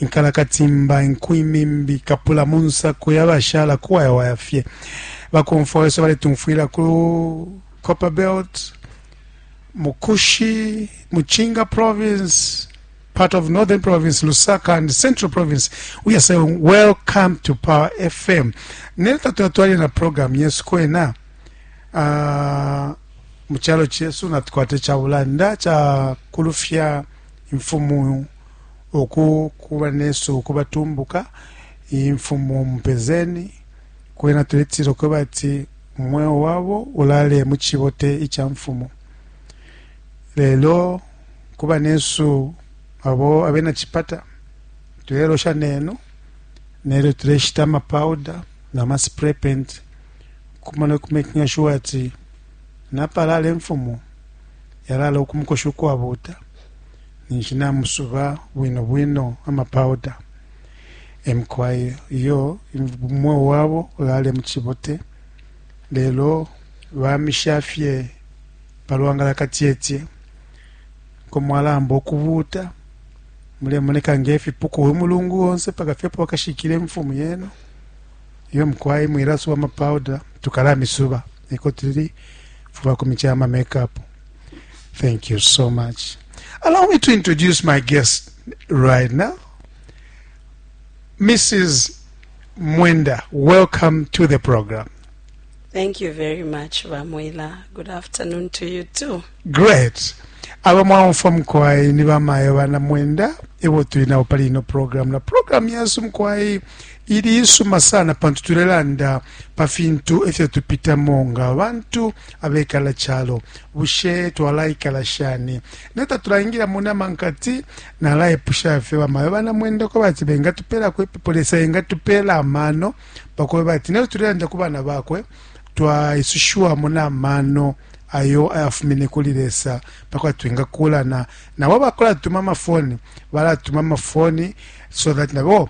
inkalakatimba, inku, imimbi, kapula, munsakwe, abashala kuwayawaya fye bakomfwa wesu baletumfwila ku Copperbelt, Mukushi, Muchinga province, part of Northern province, Lusaka and Central province. We are saying welcome to Power FM. Nero tatwatwali na program yesu kwena uh, mu kyalo kyesu natukwata ekya bulanda kya kulufya imfumu uku kuba nesu ukuba tumbuka imfumu mupezeni kwena tuletilo kweba ati mweo wabo ulale mu cibote ica mfumu lelo kuba nesu abo abena cipata tulelosha nenu nelyo tuleshita amapowder na ma spray paint kumona kumekinga sure ati napalala imfumu yalala ukumukoshi ukwabuta ninshi namusuba bwino bwino ama powder emukwai iyo umweo wabo ulale muchibote lelo bamisha fye palwangala katyetye komwalamba okubuta mulemoneka ngefipuku uyu mulungu onse paka fye pokashikile mfumu yenu iyo mukwai mwilasuba ama powder tukalamisuba eko tuli fuba kumicha ama makeup Thank you so much. Allow me to introduce my guest right now. Mrs. Mwenda, welcome to the program. Thank you very much, Vamwila. Good afternoon to you too. Great. aba mwaumfwa mukwai ni bamayo bana mwenda ebo tuli nabo pali ino program na program yesu mukwai ili isuma sana pantu tulelanda pa fintu ifyo tupitamo nga bantu abekala calo bushe twalaikala shani ne tatulaingila mu nama nkati nalaipusha fye bamayo banamwendako bati bengatupelako ipepo lesa engatupeela amano pakuba bati nelyo tulelanda ku bana bakwe twaisushiwamo n'amano ayo ayafumine kuli lesa pakuba twingakulana nabo bakulatuma amafoni balatuma amafoni so that nabo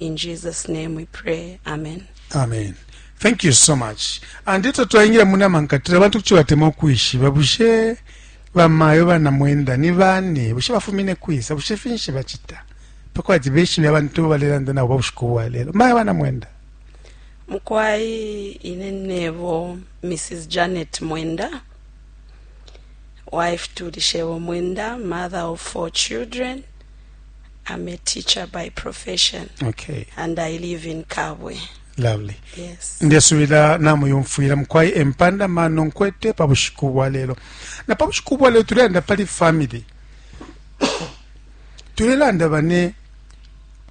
In Jesus name we pray. Amen. Amen. Thank you so much. And eto twaingira muna mankatira bantu kucho batema okwishiba bushe bamayo bana mwenda ni bani bushe bafumine kwisa bushe finshi bachita pakwa jibeshi bya bantu balelanda nabo bushiku bwa lelo mayo bana mwenda mukwai ine nebo Mrs Janet Mwenda wife to Lishewo Mwenda mother of four children I'm a teacher by profession. Okay. And I live in Kabwe. Lovely. Yes. Ndesubira namuyumfwira mukwai empanda mano nkwete pa bushiku bwa lero. Na pa bushiku bwa lero tulenda pali family. tulelanda bane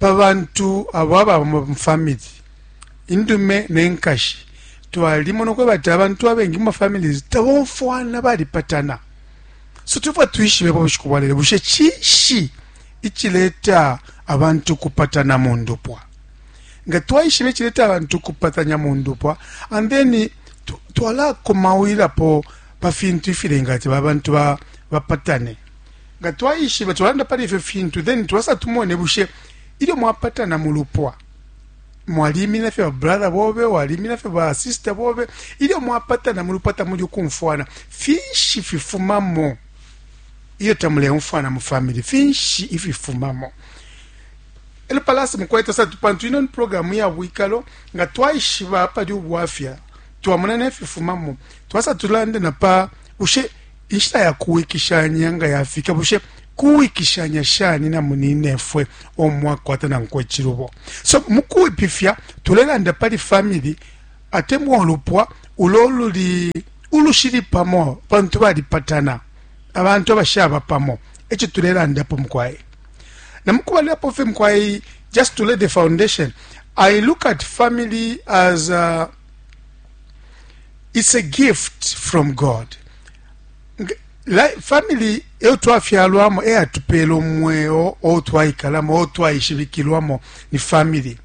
pa bantu abo ababa mu family indume nenkashi twalimona kwebati abantu abengi mu mafamilies tabomfwana balipatana So tulefwaya twishibe pa bushiku bwa lelo, bushe cinshi icileta abantu ukupatana mu ndupwa? Nga twaishiba icileta abantu ukupatanya mu ndupwa and then twalakomawilapo pa fintu ifilenga ati abantu bapatane ba nga twayishiba twalanda pali ifyo fintu then twasa tumone bushe ilyo mwapatana mu lupwa mwalimina fye ba brother bobe walimina fye ba sister bobe ilyo mwapatana mu lupata muli ukumfwana finshi fifumamo iyo tamuleumfwana mu family finshi ififumamo elo palasi mukweta satu pantu ino ni programu ya bwikalo nga twaishiba pali ubwafya twamona nefifumamo twasa tulande na pa ushe Inshita ya kuwikishanya nga yafika, bushe kuwikishanya shani na muninefwe uo mwakwata nankwe icilubo? So mu kwipifya tulelanda pali famili atemwa ulupwa ulo luli ulushili pamo pantu balipatana, abantu abashaba pamo. E co tulelandapo mukwai na mu kubalilapo fye mukwai, just to lay the foundation, I look at family as a It's a gift from God. Family eyo twafyalwamo eyatupela omweo ou twaikalamo ou twaishibikilwamo ni family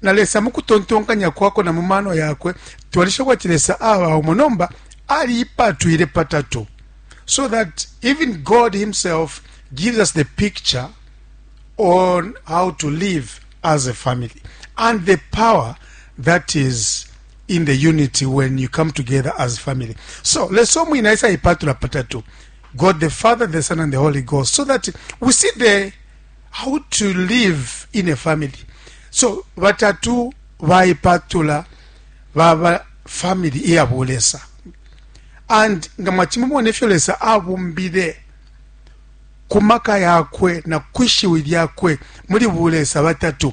na lesa mu kutontonkanya kwakwe na mu mano yakwe twalisha kwati lesa aba umo nomba aliipatwile patatu so that even god himself gives us the picture on how to live as a family and the power that is in the unity when you come together as family so leso mwina isa ipatula patatu god the father the son and the holy ghost so that we see the how to live in a family so batatu baipatula baba family iyabulesa and nga mwachimumona efyo lesa abumbile kumaka yakwe na kwishiwi lyakwe muli bulesa batatu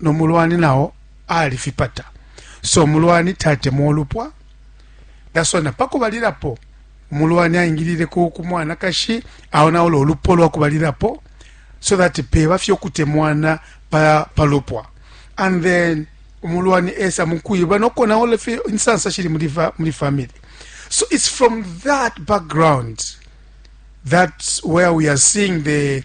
no mulwani nao alifipata so umulwani tatemwa ulupwa dasona pakubalilapo umulwani aingilile ku kumwanakashi aonaula ulupwa lwa kubalilapo so that peba fye ukutemwana pa, pa lupwa and then umulwani esa mukwiba nokonaula fye insansa shili muli, fa, muli family so it's from that background that's where we are seeing the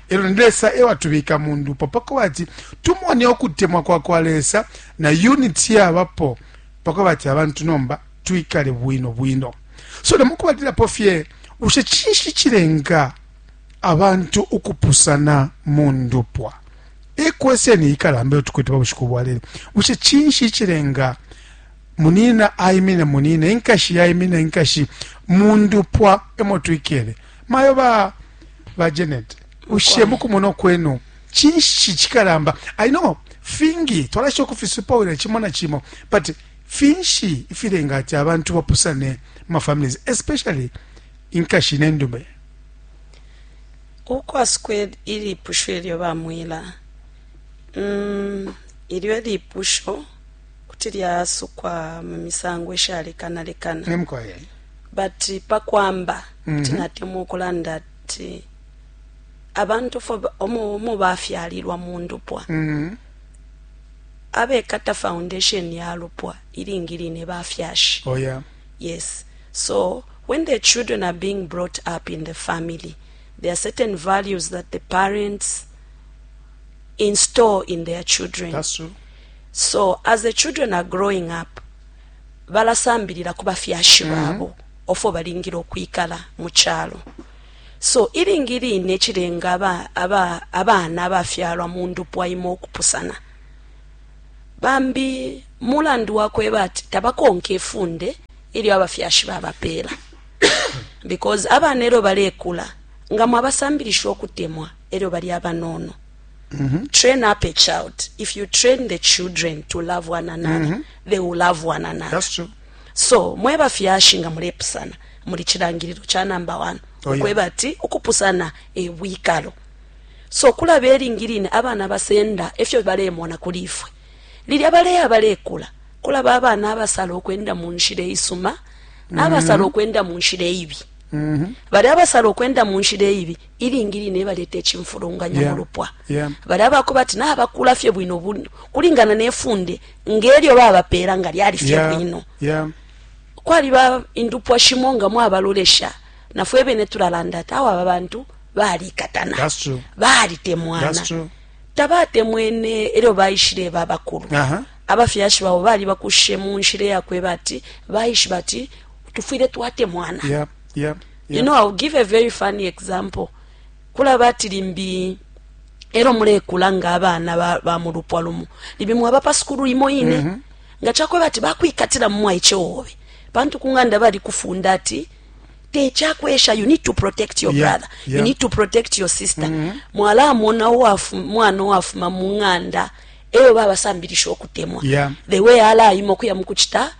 Elo ni Lesa ewa tubika mu ndupo pako bati tumone ukutemwa kwa kwa Lesa na unity ya bapo pako bati abantu nomba tuikale bwino bwino. So na muku batila pofye ushe chinshi chilenga abantu ukupusana mu ndupwa. E kwese ni ikalambe utukwete babushiku bwalele. Ushe chinshi chilenga munina aimine munina inkashi yaimine inkashi mu ndupwa emo tuikele. Mayo ba ba Janet ushe mukumona kwenu chinshi chikalamba i know fingi twalasho kufisupa wena chimo na chimo but finshi ifilenga ati abantu bapusane ma families especially inkashi nendume ukwa squared ili pusho elyo bamwila mm, ilyo lipusho kuti lyasukwa mu misango ishalekanalekana Emkoye. but pakwamba kuti natemwa ukulanda ati abantu fo ba- omo omo bafyalilwa mu ndupwa Mhm. abekata foundation ya lupwa ilingi line bafyashi Oya. Yes. So when the children are being brought up in the family, there are certain values that the parents install in their children. That's true. So as the children are growing up, balasambilila ku bafyashi babo ofo balingile ukwikala mu calo. So ilingi line cilenga aba, aba, abana abafyalwa mu ndupwa imo ukupusana. Bambi mulandu wakweba ati tabakonke ifunde ilyo abafyashi babapeela because abana elyo balekula nga mwabasambilisha ukutemwa elyo bali abanono. Train up a child. If you train the children to love one another, mm -hmm. they will love one another. That's true. So, mwe bafyashi nga mulepusana muli kirangiriro kya number 1 oh, okweba yeah. ati okupusana e bwikalo. So kulaba eringirine abana basenda efyo balemona kuli ifwe. Lili abaleya balekula kulaba abana abasala okwenda mu nshira isuma n'abasala mm -hmm. okwenda mu nshira ibi. Mm -hmm. Bali abasala okwenda mu nshira ibi ilingi line baleta icimfulunganya yeah. mu lupwa yeah. bali abakuba ati nabakula fye bwino bwino kulingana nefunde ngelyo babapeela nga lyali fye yeah. bwino yeah. kwaliba indupwa shimo nga mwabalolesha nafwe bene tulalanda ati awo aba bantu balikatana balitemwana tabatemwene elyo baishile babakulu uh -huh. abafyashi babo bali bakushe mu nshila yakweba ati baishiba ati tufwile twatemwana yeah. yeah. you know i'll give a very funny example kulaba ati limbi elo mulekula nga abana ba, ba mu lupwa lumu limbi mwaba pa sukulu imo ine mm -hmm. nga chakweba ati bakwikatila mumwaiche wobe pantu kunganda bali kufunda ati techakwesha you need to protect your yeah, brother yeah. you need to protect your sister mm -hmm. mwala amona wafu mwana wafuma munganda eyo baba sambilisho kutemwa yeah. the way ala imo kuya mukuchita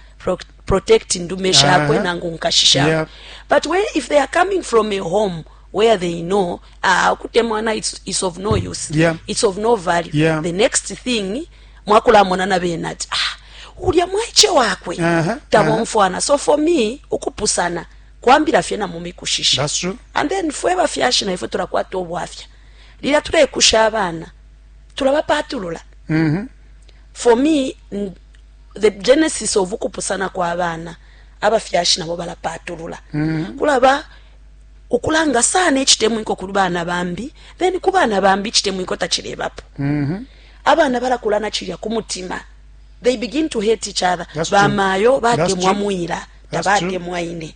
protect ndume shakwe uh -huh. nangu nkashi shakwe yep. but when, if they are coming from a home where they know ah, ukutemwana uh, it's, it's of no use yeah. it's of no value yeah. the next thing mwakulamonana bena ati ah, ulya mwaiche wakwe uh -huh. tabomfwana uh -huh. so for me ukupusana kwambira fye na mumikushisha That's true. and then fwe bafyashi na ifwe turakwata obwafya lira turekusha abana turabapatulula mm -hmm. for me the genesis of ukupusana kwa bana abafyashi nabo balapatulula mm. kulaba ukulanga sana ekitemwiko ku baana bambi then ku baana bambi ekitemwiko takirebapo mm -hmm. abaana balakula nakirya ku mutima they begin to hate each other bamaayo batemwa mwira tabatemwa ine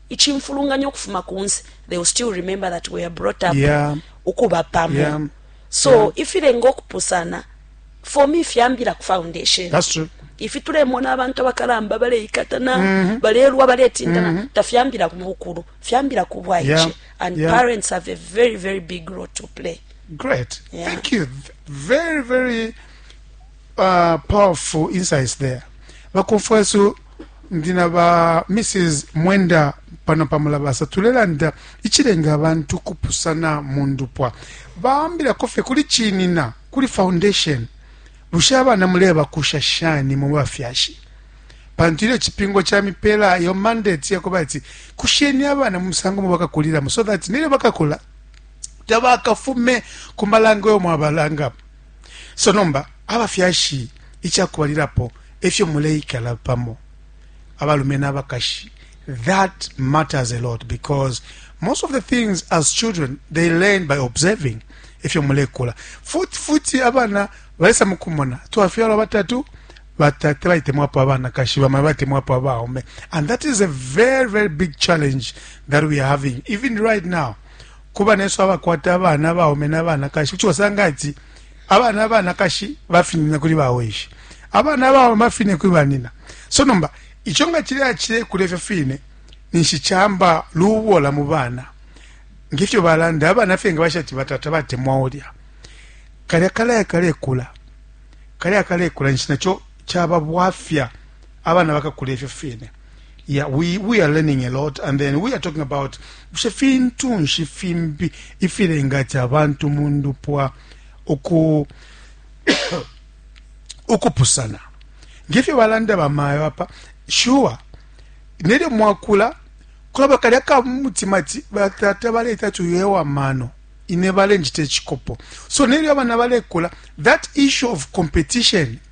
icimfulunganya ukufuma kunse, they will still remember that we are brought up yeah. ukuba pamo yeah. so yeah. ifilenga ukupusana for me fyambila ku foundation That's true. ifi tulemona abantu abakalamba baleikatana mm -hmm. balelwa baletindana mm -hmm. tafyambila ku bukulu fyambila ku bwaice yeah. and yeah. parents have a very very big role to play great yeah. thank you very very uh, powerful insights there bakofwesu ndi na ba mrs mwenda pano pamulabasa tulelanda ichilenga abantu kupusana mu ndupwa baambilako fye kuli chinina kuli foundation bushe abana mulebakusha shani mu bafyashi pantu ilyo chipingo cha mipela yo mandate yakuba ati kusheni abana mu musango mubakakulilamo so that nilyo bakakula tabakafume ku malango yo mwabalanga so nomba abafyashi ikyakubalilapo efyo muleikala pamo abalume n'abakashi that matters a lot because most of the things as children they learn by observing efyo mulekula futi futi abana balesa mukumona twafyalwa batatu batate baitemwapo abanakashi bamai baitemwapo abaume and that is a very very big challenge that we are having even right now ku banesu abakwata abana abaume na banakashi kuti wasanga ati abana abanakashi bafinina kuli baweshi abana abaume bafine kuli banina so nomba ico nga cileya cilekula ifyo fine ninshi camba lubola mu bana ngefyo balanda abana fye nga bashati batata batemwa ulya kalya kalaya kalekula kalya kalekula ninshi naco caba bwafya abana bakakula ifyo fine Yeah, we, we are learning a lot and then we are talking about bushe fintu nshi fimbi ifilenga ati abantu mu ndupwa uku ukupusana ngefyo balanda bamayo apa sure nelyo mwakula kulaba kalya ka mutima ati batata baleeta ti uyo ewa mano ine balenjita ekikopo so nelyo abana balekula that issue of competition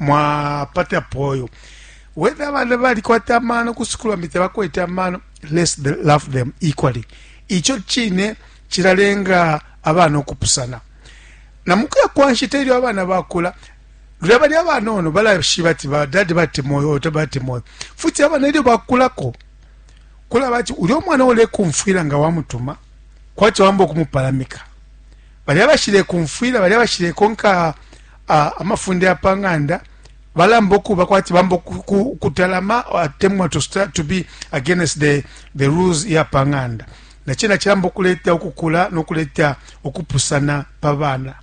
mwapata poyo whether abana balikwata amano ku sukulu bambi tebakwete amano let's love them equally ico cine cilalenga abana okupusana na mukuya kwa nshita ilyo abana bakula lulya bali abanono balashiba ati badadi batemoyo oto batemoyo futi abana ilyo bakulako kulaba ati ulya omwana ulekumfwila nga wamutuma kwati wamba okumupalamika balya bashilekumfwila balya bashilekonka amafunde ya pa ng'anda balamba okuba kwati bamba ukutalama atemwa to start to be against the, the rules ya pa ng'anda nacena cilamba okuleta okukula nokuleta okupusana pa bana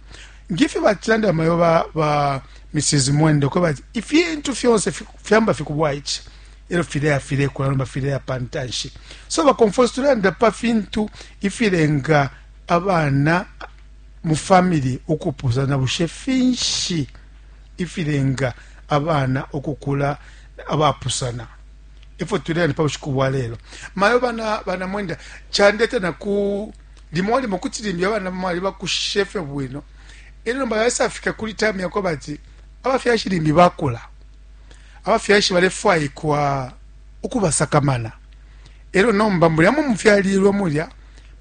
ngifi batilanda bamayo ba, ba mrs mwende okweba ati ifintu fyonse fyamba fikubwa ici elo fileya filekula nomba fileya pa ntanshi so baconfose tulanda pa fintu ifilenga abana mu famili ukupusana, bushe finshi ifilenga abana ukukula abapusana? E fyo tulela ni pa bushiku bwa lelo. Mayo bana bana mwenda candeta na ku limo limo kuti limbi abana mwali bakushishe fye bwino e lyo nomba yasafika kuli time yakwa bati abafyashi limbi bakula abafyashi balefwaikwa ukubasakamana E lyo nomba mulya mu mufyalilwe, mulya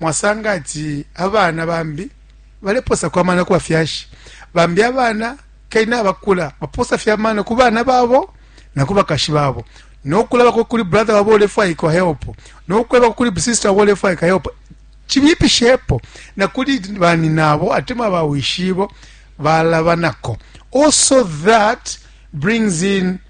mwasanga ati abana bambi balepoosako amano ku bafyashi. Bambi abana kay nabakula, bapoosa fye amano ku bana babo na ku bakashi babo, no kulabako kuli brother wabo uulefwaikwa help, no kwebako kuli sister wabo uulefwaika help, cibipishepo na kuli banyinabo atemwa bawishibo, balabanako also that brings in.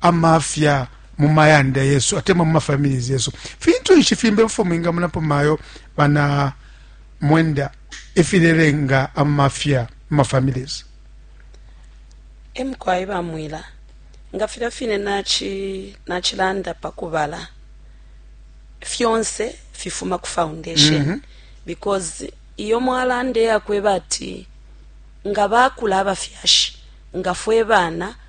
amafya mu mayanda yesu atemwa mu mafamilies yesu fintu nshi fimbe bifo mwingamunapo mayo bana mwenda efilelenga amafya mu mafamilies emukwai bamwila nga filya fine nachilanda nachi pakubala fyonse fifuma ku foundation mm -hmm. because iyo mwalanda eyakweba ati nga bakula abafyashi nga fwe bana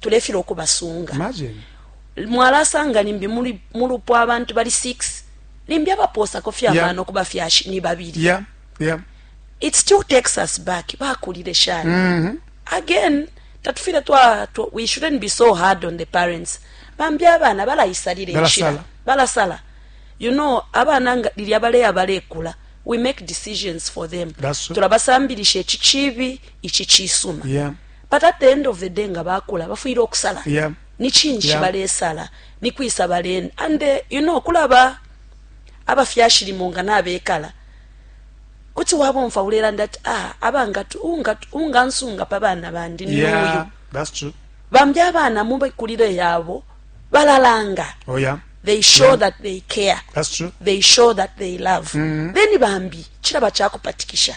tulefila ukubasunga mwalasanga limbi mu lupwa abantu bali 6 limbi abapoosako fye amano yeah. ku bafyashi ni babili yeah. yeah. it still takes us back bakulile shani mm -hmm. again tatufile twa, twa we shouldn't be so hard on the parents bambi abana balayisalira enshira balasala you know abana nga lilya baleya balekula we make decisions for them tulabasambirisha ekikibi ikikiisuma yeah. But at the end of the day nga bakula bafwile ukusala yeah. Ni chinshi yeah. balesala ni kwisa balen and uh, you know kulaba abafyashi limo nga nabekala kuti wabomfa ulelanda ati ah, abanga ungansunga pa bana bandi ni yeah, uyu bambi abana mubekulire yabo balalanga oh, yeah. they show yeah. that they care they show that they love mm -hmm. then bambi chiraba chakupatikisha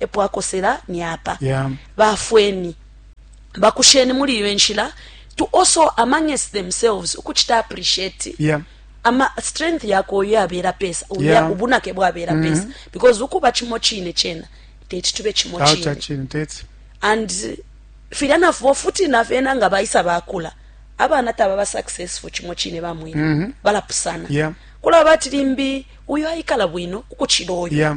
epo akosela ni apa. Baafweni, bakusheni muli iyo inshila to also amanges themselves ukuchita appreciate yeah. ama strength yako uyo yabela pesa uyo yeah. ubunake bwabela mm -hmm. pesa because ukuba chimo chine chena teti tube chimo chine chine teti and filya nafo futi nafena nga baisa bakula abana taba ba successful chimo chine bamwe mm -hmm. balapusana yeah. kula bati limbi uyo aikala bwino ukuchilo uyo yeah.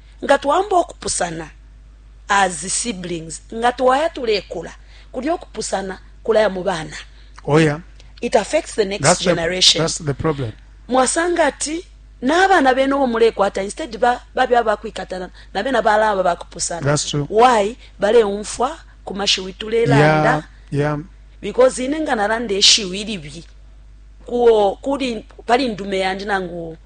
nga twaamba ukupusana as siblings nga twaya tulekula kulya ukupusana kulaya mu bana oh yeah it affects the next that's generation the, that's the problem mwasanga ati n'abaana beena obo mulekwata instead babe abakwikatana nabeena balaba bakupusana why baleumfwa ku mashiwi tulelanda yeah, yeah. because ine nga nalanda eshiwi libi kuo kuli pali ndume yandi nangu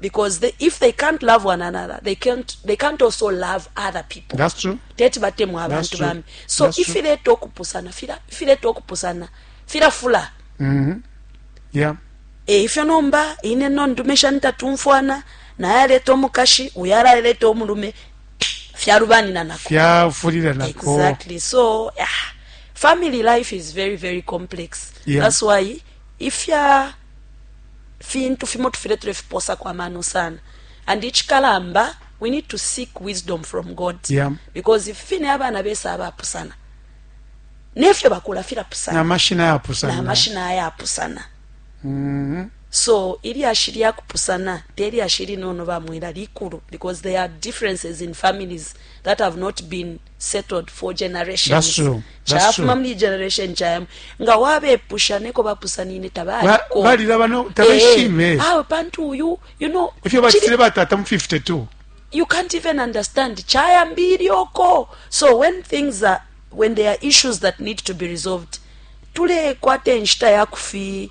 because they, if they can't love one another they can't, they can't also love other people that's true teti batemwa abantu bambi so that's ifileta okupusana fila ifileta okupusana filafula mm -hmm. yeah e ifyo nomba ine no ndume shani tatumfwana naye aleta omukashi uyo alaleta omulume fyalubanina nako fyafulira nako exactly so yeah. family life is very very complex yeah. that's why ifya fintu fimo tufwile tulefipoosako amano sana and icikalamba we need to seek wisdom from God yeah. because ifi fine abana besa abapusana nefyo bakula filapusana na mashina yapusana na mashina yapusana mm -hmm. so ilyashi lyakupusana telyashi linono bamwila likulu because there are differences in families that have not been settled for generations chafuma muli generation chayam nga wabepusha neko bapusanine tabaliko balilaba no tabeshime eh, eh. awe pantu uyu you know ifyo batile batata mu 52 you can't even understand chayambiri oko so when things are when there are issues that need to be resolved tulekwata enshita yakufi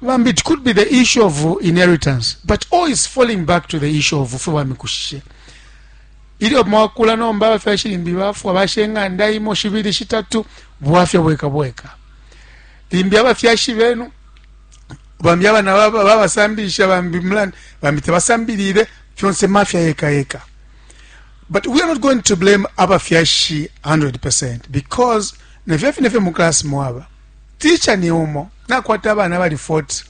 bambi it could be the issue of inheritance but all is falling back to the issue of fwe bamikushishe ilyo mwakula nomba abafyashi limbi bafwa bashe ing'anda imo shibili shitatu bwafya bweka bweka limbi abafyashi benu bambi abana babasambilisha bambi mulani bambi tebasambilile fyonse mafya yeka yeka but we are not going to blame abafyashi 100 because nefyo fine fye mu class mwaba Teacher ni umo. Nakwata abana abali 40.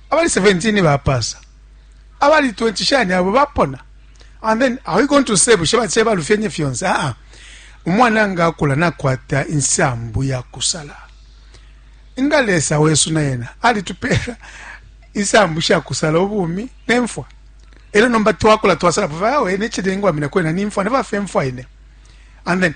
Abali 17 bapasa. Abali 20 shani abo bapona. And then are we going to say bushe bache balufyenye fyonse? Ah ah. Umwana nga akula nakwata insambu ya kusala. Nga Lesa wesu na yena alitupera insambu sha kusala ubumi nemfwa. Elo nomba twakula twasala pa vawe ne chidengwa mina kwena nimfwa ne vafe mfwa ine. And then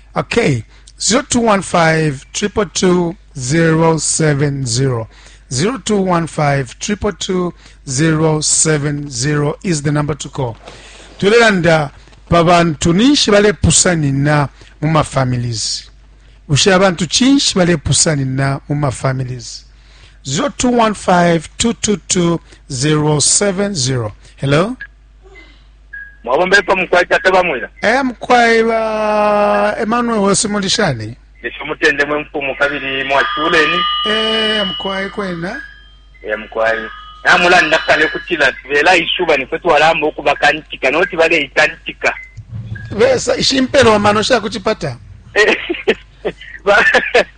Okay, 0215-222-070. 0215-222-070 is the number to call. Tulelanda pa bantu ninshi balepusanina mu ma families. Bushe abantu chinshi balepusanina mu ma families. 0215-222-070. Hello? mwabomba epa mukwai tata bamwila e mukwai ba emmanuel wose muli shani esho umutende mwe mfumu kabili mwachuleni e mukwai kwena e mukwai namulanda kale kutila tibela ishuba nifwe twalamba ukubakantika noti baleikantika besa ishimpelo amano shakuchipata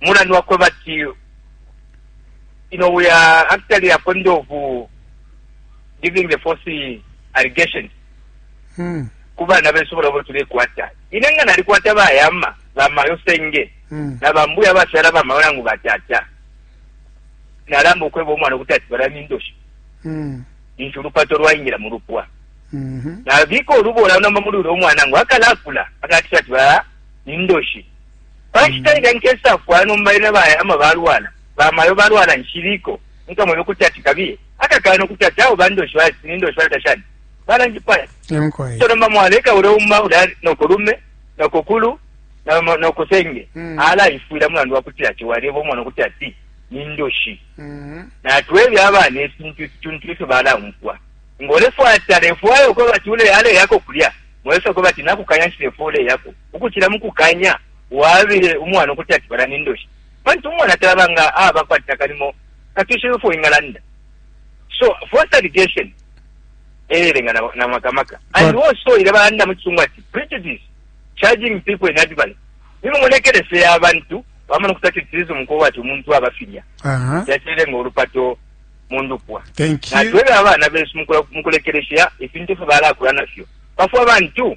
mulandu wakwebati you know we are actually according of uh, giving the false allegations mm. kubana besu bolobo tulekwata ine nga nalikwata bayama bamayo senge mm. na bambuya bashala bamayo nangu batata nalamba okweba omwana okuti ati balami ndoshi mm. nti olupato lwayingira mu lupwa mm-hmm. nabiika olubola namba muli uli omwana ngu akalakula akatisha ati bala nindoshi Pa nshita ilya nkesafwa, nomba ena bayama balwala, ba mayo balwala, nshiliko, mukamwebe ukuti ati kabiye. Akakana ukuti ati awe bandoshi baya ati nindoshi baya tashani balanjipaya. Emkwai. So nomba mwaleka ule uma ule noko lume, noko kulu, na ma- noko senge. Mm. Ala ifwila mulandu wakuti ati waleba umwana ukuti ati nindoshi. Mhm. natwebe abana efintu ifituntu ifyo balaumfwa ngolefwata lefwayo ko bati uleyale yako kulya mwesa ko bati nakukanya nshilefwa uleyako ukucila mu kukanya wabile umwana ukuti ati bala ni ndoshi pantu umwana talaba nga aba kwati nakalimo katwishibe fo ingalanda so forced education eyelenga na, na makamaka and also ile balanda mu kisungu ati prejudice charging people in advance nimo mulekelese ya abantu bamana okutati tirizo mukoba ati omuntu abafirya yakirenga olupato mundupwa natwebe abaana besu mukulekeresya efintu fye balakura nafyo bafwe abantu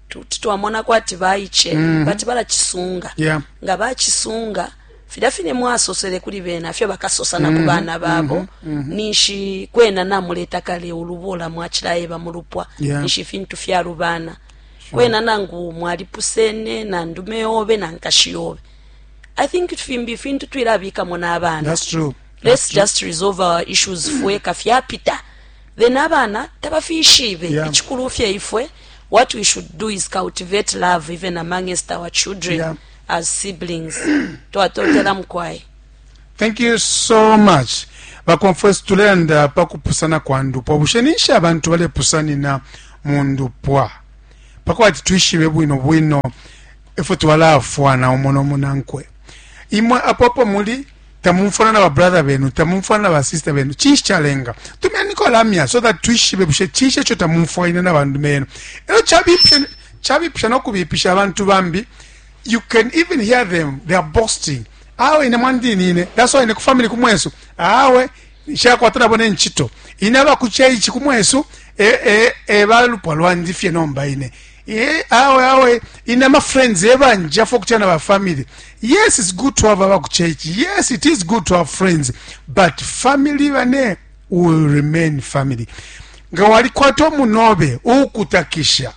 kuti twamona kwati baice mm -hmm. bati balacisunga yeah. nga bacisunga filya fine mwasosele kuli bena fyo bakasosa na ku mm-hmm. bana babo mm -hmm. mm -hmm. ninshi kwena namuleta kale ulubola mwacilayeba mu lupwa yeah. ninshi fintu fyalubana sure. kwena nangu mwalipusene na ndume yobe na nkashi yobe i think fimbi fintu twilabikamo n'abana That's true. let's That's just true. resolve our issues fweka fyapita then abana tabafishibe yeah. ikikulu fye ifwe yeah. what we should do is cultivate love even amongst our children yeah. as siblings twatotela mukwai thank you so much baconfes tulenda pa kupusana kwa ndupwa bushe ninshi abantu balepusanina mu ndupwa pakuba ati twishibe bwino bwino efwe twalafwana umo nomunankwe imwe apopo muli tamumfwana na babrother benu tamumfwana na basister benu cinshi calenga tumeniko lamya so that twishibe bushe cinshi eco tamumfwaine na bandu benu elo cabipisha nokubipisha abantu bambi you can even hear them they are boasting awe ine mwandinine that's why ine kufamily kumwesu awe shakwata nabo nencito ine abakuceici kumwesu e, e, e, balupwa lwandi fye nomba ine Eh, awe awe ine ama friends ebanjafo kuchana ba family yes it's good to have aba ku church yes it is good to have friends but family bane will remain family nga walikwata omunobe uukutakisha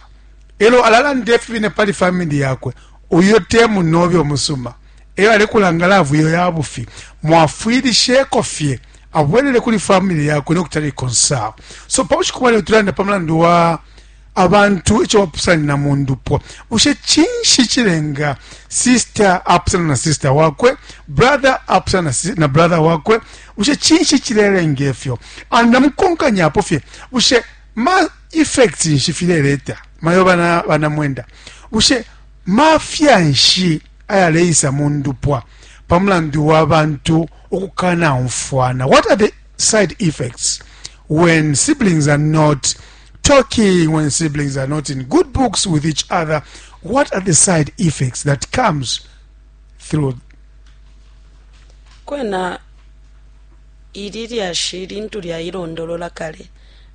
elo alalanda efi bine pali family yakwe uyo te munobe omusuma eyo alekulanga lavu iyo ya bufi mwafwilisheko fye abwelele kuli family yakwe nokutali konsawo so pa bushiku bwaleo tulanda pa mulandu wa abantu ico bapusanina mu ndupwa bushe cinshi cilenga sister apusana na sister wakwe brother apusana na si- na brother wakwe bushe cinshi cilelenga ifyo and namukonkanyapo fye bushe ma effects nshi fileleta mayo bana banamwenda bushe mafya nshi ayaleisa mu ndupwa pa mulandu wa bantu ukukanaumfwana what are the side effects when siblings are not talking when siblings are not in good books with each other what are the side effects that comes through kwena ili lyashi lintu lyailondolola kale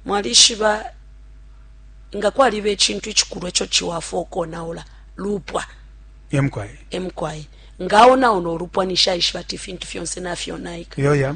mwalishiba nga kwaliba ecintu icikulu eco ciwafa okonaula lupwa emkwaye emkwaye ngaonaona olupwa nishaishiba ti ifintu fyonse nafyonaika yoya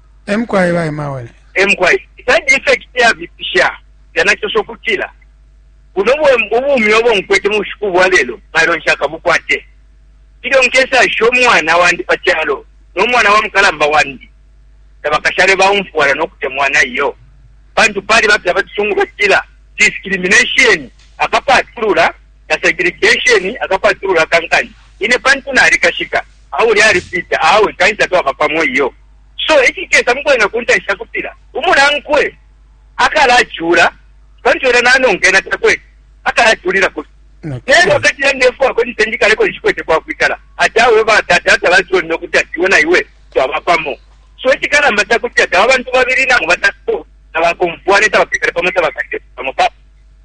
e mukwai ba Emmaule. e mukwai side effect yabipisha yanaciosha ukutila buno ubumi obo nkwete mu bushiku bwa lelo mailo nshakabukwate ilyo nkesasha umwana wandi pa calo no mwana wa mukalamba wandi tabakashale baumfwana no kutemwana iyo pantu pali bapya batusungu batila discrimination akapatulula na segregation akapatulula kankani ine pantu nalikashika auli alipita awe kanisa twaba pamo iyo So icikesa mukwena kuntanshi cakutila umunankwe akalacula pantu ena nanonka ena takwete akalaculilako fye. Nelyo akatila ndefwako nise njikaleko nshikwete kwakwikala ati awe batata tabansonine ukuti ati iwe na iwe twaba pamo. So icikalamba cakutila taba bantu babili nangu batatu tabakomfwane tabakekale pamo tabakatile pamo papa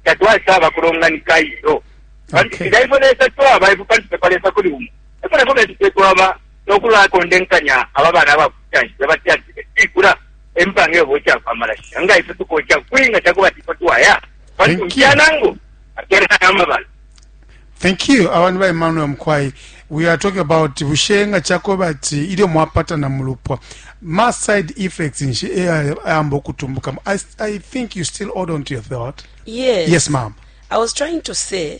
tatwasaba kulonganika iyo. Pantu Okay. nga ifwe Lesa twaba ifwe pantu pepa Lesa kuli umo. Efwe nafwe betu fye twaba no kulakondenkanya aba bana aba kutanshi baba tyatile tikula empanga yobo cha kwa malasha nga ife tuko cha kwinga cha kubati kwa twaya kwa tukia nango akera kama bana Thank you abantu ba Emmanuel Mkwai we are talking about bushenga cha kubati ilyo mwapata na mulupwa ma side effects nshi eh, ambo kutumbuka I, I think you still hold on to your thought Yes yes ma'am I was trying to say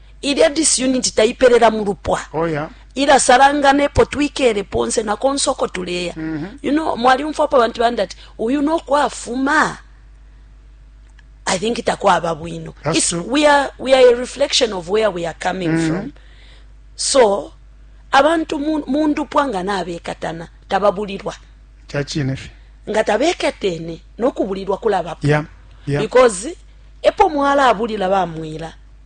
Ilya disunity taipelela mu lupwa. Oh, yeah. ilasalangana epo twikele ponse na konse uko tuleya mm -hmm. you know, mwalyumfwapo abantu bandi ati uyu nokwafuma i think takwaba bwino we are, we are a reflection of where we are coming mm -hmm. from so abantu mu ndupwa nga nabekatana tababulirwa nga tabekatene nokubulirwa kulabapo yeah, yeah. because epo mwalabulira bamwira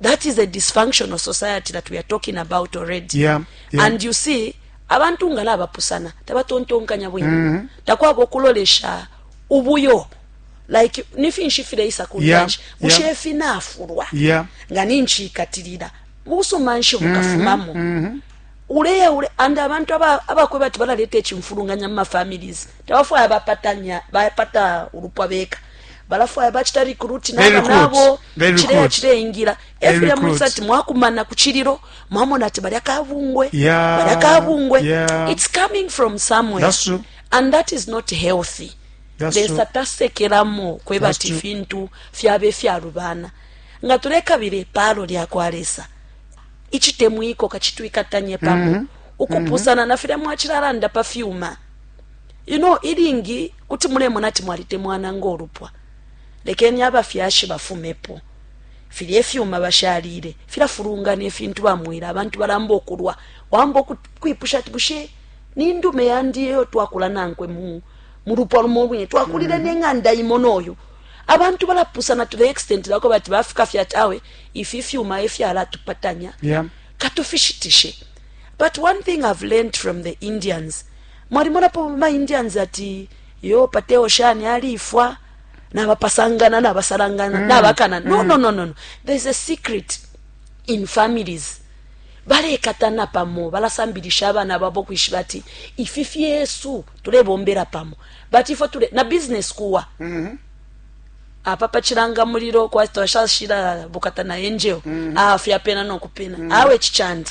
that is a dysfunctional society that we are talking about already yeah, yeah. and you see abantu nga nabapusana tabatontonkanya bwino mm -hmm. takwaba okulolesha ubuyo like nifinshi fireisa ku yeah, ntanshi yeah. mushefi nafurwa yeah. nga ninchikatirira busuma nshi mm-hmm, bukafumamo mm -hmm, mm -hmm. ule ule and abantu abakwe bati balaleta ekimfulunganya mu mafamilies tebafwaya bapatanya bapata ulupwa beka balafwaya bacita recruit naba nabo cileya cileingila efulya mulisa ati mwakumana ku cililo mwamona ati balya kabungwe yeah. balya kabungwe yeah. it's coming from somewhere and that is not healthy lesa tasekelamo kweba ati fintu fyaba efyalubana nga tulekabila epaalo lyakwa lesa icitemwiko kacitwikatanye pamo mm -hmm. ukupusana mm -hmm. na filya mwacilalanda pa fyuma you know ilingi kuti mulemona ati mwalitemwana ngo lupwa lekeni abafyashi bafumepo filya ifyuma bashalile filafulungana ifintu bamwila abantu balamba okulwa wamba kwipusha ati bushe ni ndume yandi eyo twakula nankwe mu mu lupwa lumo lwine twakulile mm -hmm. neng'anda imo noyo abantu balapusana to the extent lako bati bafika fya ati awe ifi ifyuma efyalatupatanya yeah. katufishitishe but one thing i've learned from the indians Mwalimonapo ma Indians ati yo pateo shani alifwa nabapasangana nabasalangana mm. nabakana no, mm. no, no, no, no. there's a secret in families balekatana pamo balasambilisha abana babo kwishiba ati ifi fyesu tulebombera pamo but ifo tule na business kuwa mm -hmm. apa pachiranga muriro kwatwashashira bukata na angel mm -hmm. afya pena nokupena mm -hmm. awe chichandi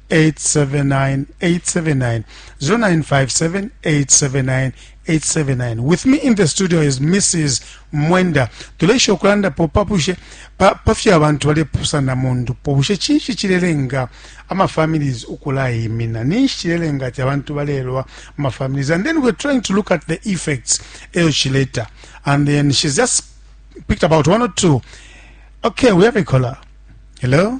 879 879 0957 879 with me in the studio is mrs mwenda tulesha okulandapo papushe pa, pa fyo abantu balepusana mu ndupo bushe cinshi cilelenga amafamilies ukulayimina ninshi cilelenga ati abantu balelwa amafamilies and then we're trying to look at the effects eyo cileta and then she's just picked about one or two okay we have a caller hello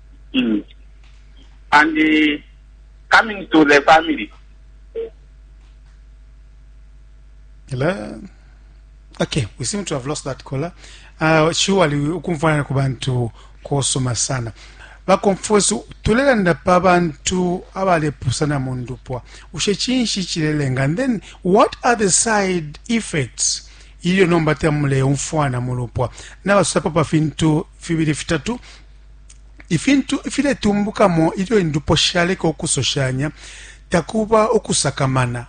Mm. And uh, coming to the family, Hello. Okay, we seem to have lost that caller. Uh, surely ukumfana ku bantu kosoma sana bakonfusi tulelanda pa bantu abalepusana mu ndupwa ushe kinshi kirelenga and then what are the side effects ilyo nomba tamuleyumfwana mu lupwa nabasusapo pa fintu fibiri fitatu ifintu ifiletumbukamo ilyo indupwa shaleka ukusoshanya takuba ukusakamana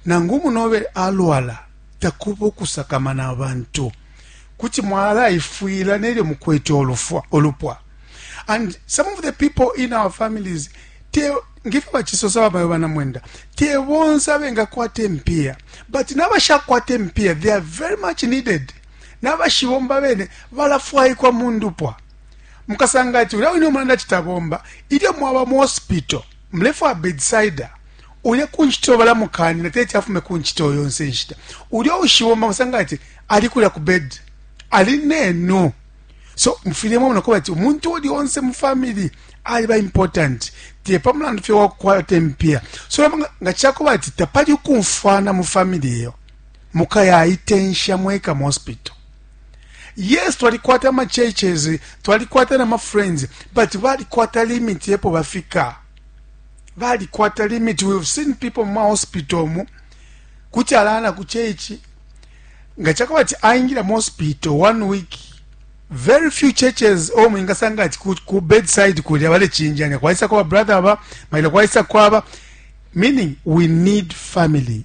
nangu umunobe alwala takuba ukusakamana abantu kuti mwalaifwila nelyo mukwete olufwa olupwa and some of the people in our families te ngifyo bachisosa babayo banamwenda te bonse abengakwata empiya but nabashakwata empiya they are very much needed na bashibomba bene balafwaikwa mu ndupwa mukasanga ati ulya wine umulanda ati tabomba ilyo mwaba mu hospital mulefwaya bedsida ulya ku ncito balamukanina teti afume ku ncito yonse nshita ulya ushibomba musanga ati ali kulya ku bed ali nenu so mufile mwamona kuba ati umuntu uli onse mu family aliba important te pa mulandu fye wakukwata empia so nga cakuba ati tapali ukumfwana mu family eyo mukayaitensha mweka mospito yes twalikwata ama churches twalikwata na ma friends but balikwata limit yepo bafika balikwata limit we've seen people mu hospital mu kuti alana ku church nga chakaba ti aingira mu hospital one week very few churches o mwingasanga ati ku, ku bedside kuli abale chinjanya kwaisa kwa brother aba maila kwaisa kwaba meaning we need family